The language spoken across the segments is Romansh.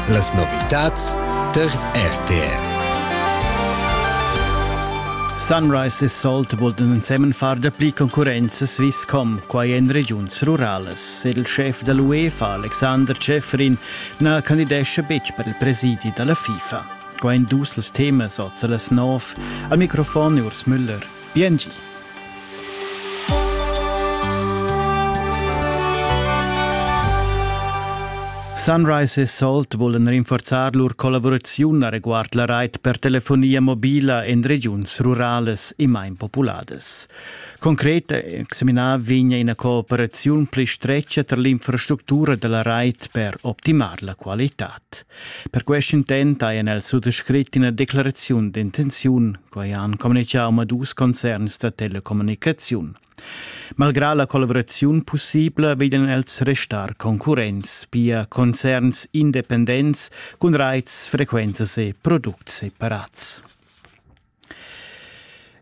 Las novitads tar RTR. Sunrise e Salt vultan ensemen far dapli concurrenza Swisscom, quai en regiuns ruralas. Il schef da l'UEFA, Alexander Schäfrin, na candidescha betg per il presidi da la FIFA. Qua en dus temas oza las nov. Al microfon Urs Müller. Biengi. Sunrise e Salt vulan rinforzar lur collavuraziun a reguard la rait per telefonia mobila en regiuns rurales e main populadas. Concret examinar vegna ina cooperaziun pli stretga tar l'infrastructura da la rait per optimar la qualitad. Per quest intent ha el suttescrit ina declaraziun d'intenziun Quai han communitgà omadus concerns da telecommunicaziun. Malgrà la collaboraziun pussibla vegnan els restar concurrents, pia concerns independents cun raits, frequenzas e products separats.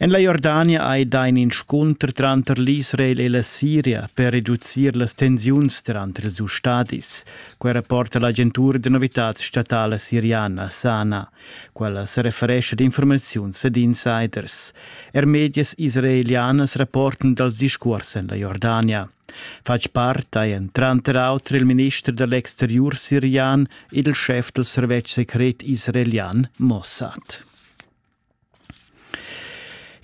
En la Jordania hai dà in inscunter tranter l'Israel e la Siria per reducir las tensiuns tranter ils stadis. Quai rapporta l'agentura da novitads statala siriana SANA. Quella sereferescha d'informaziuns ed insiders. Er medias israelianas rapportan dals discuors en la Jordania. Fatg part ein tranter auter il minister dell'exterior sirian ed il chef del servetsch secret israelian Mossad.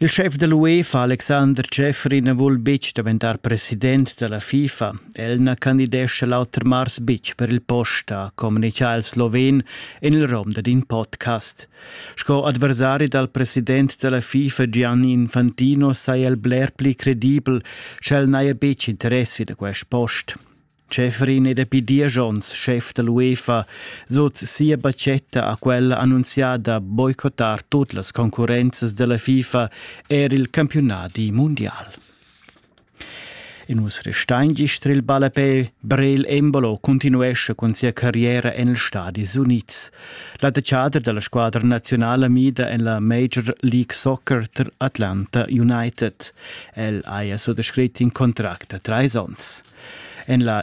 Il schef da l'UEFA Alexander Schäfrin vul betg daventar president da la FIFA. El na candidescha l'auter mars betg per il post, ha communitgà il sloven en il rom dad in podcast. Sco adversari dal president da la FIFA Gianni Infantino saja el bler pli credibel sch'el n'haja betg interess vi da quest post. Schäfrin è dapi diesch onns schef da l'UEFA, sut sia batgetta ha quella annunziada boicottar tut las concurrenzas da la FIFA er il campiunadi mundial. In us restain gist il ballapè Brel Embolo continuesce cun sia carriera en els Stadis Unids. L'attaccader della squadra nazionale mida en la Major League Soccer tra Atlanta United. El haja suttescrit in contract da trais onns. En la